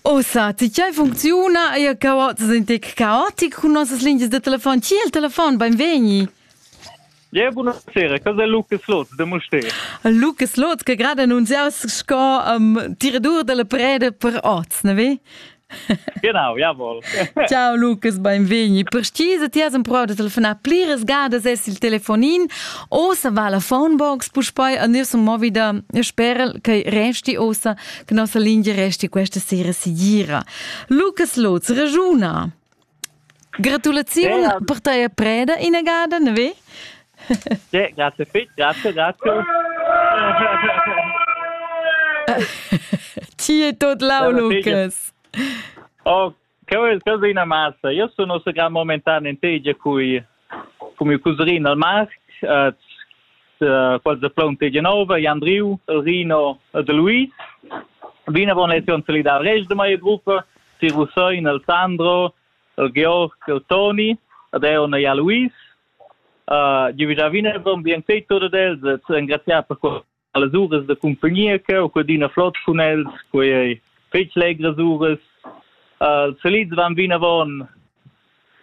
Ossa, tgei funcziuna ei caots in tec caotic cun nossas lingias da telefon? Chi è il telefon? Beinvegni. Yeah, buonasera, casa Lucas Lotz de Mustér. Lucas Lotz che grad annunziaus sco um, diredur della preda per oz, ne ve? Genau, jawohl. Ciao Lukas, benvegni. Per stisa ti has empruau da telefonar pliras gadas es il telefonin o se va la phonebox puspei a nir sun movi da sperel che resti osa che nossa lingia resti questa sera sicura. Lukas Lutz, ragiuna. Gratulaziun ja. per teia preda inagada, ne ve? Ja, grazie fit, grazie, grazie. Ti è tot lau, Lucas. Oh, che è una massa. Io sono un gran momentan in tegia qui come cuserin al marc quels de plonte Genova Jan Driu Rino de Luis vinavon lezion solidar rest de mai gruppa si Russoin el Sandro el Georg el Toni ad Eona ja Luis uh, Giuvisavina von bien sei tot ad els engraziar per Allas uras da cumpagnia che ho adina flot cun els, quei ei fetg legras uras. Uh, els solids van vinavon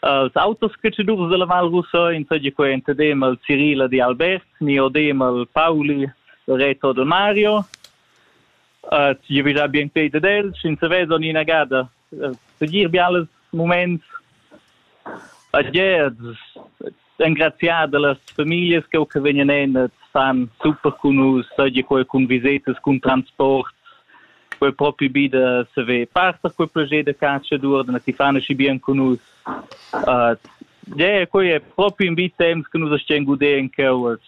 als autos cacciadurs dalla Val Russa, insomma quei entadem al Cirila di Albert, ni odem al Pauli, Reto Don Mario. Uh, tgi vi da bien pei dad els, ins veson inagada Segir bials muments a Gez, engraziar dallas familias che che vegnan en san super cun nus, seigi quei cun visetas, cun transport, quei propi bi da saver passer quei proget da calciadur, da ti fan aschi bien cun nus. Uh, yeah, quei è proprio in bit temps che nus stiamo godere in cavas.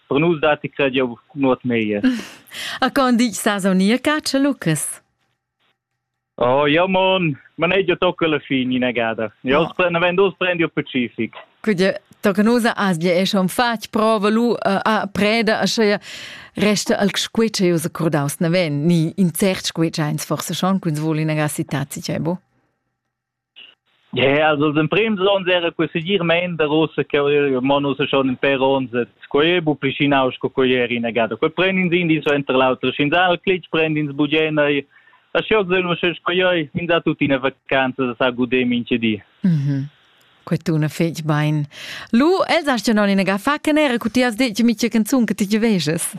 Per nus dati cred jau nuot meglio. A con dici sa sonia Cacio Lucas? Oh, jau mon manegia tocca la fin inagada. Jau no. prenda vend us prendi il Pacific. Quindi tocca nusa as bia esce un fatg prova lu uh, a preda a sche resta al squitsch eu se cordaus na ven ni in cert squitsch eins forse schon quins vol in aga citati cebo. Ja, also den Prim Zon sehr que segir men der Russe que monos schon in per ons et quei bu plicinaus co quei er in agada. Quei prendin sin di so enter l'altro sin dal clic prendin s bugena e a scios del mo sche quei in da tutina vacanza da sa gudem in cedi. Mhm. Que tu ne fetg bein. Lu, els hast ja non in aga fa che nera cu ti has detg mi che canzun che ti veges.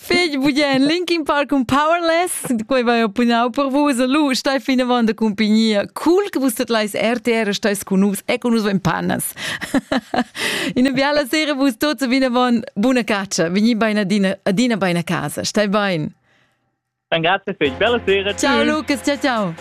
Figl bugen Linkin Park cun Powerless, quei vai oppunau per vus, lu stai fin avant da compagnia. Cool che vus tetlais RTR stais con nus e con nus vein panas. Ina biala sera vus tots vin avant buna caccia, vegni bein adina adina bein a casa, stai bein. Dann grazie figl, bella sera. Ciao Lukas, ciao ciao.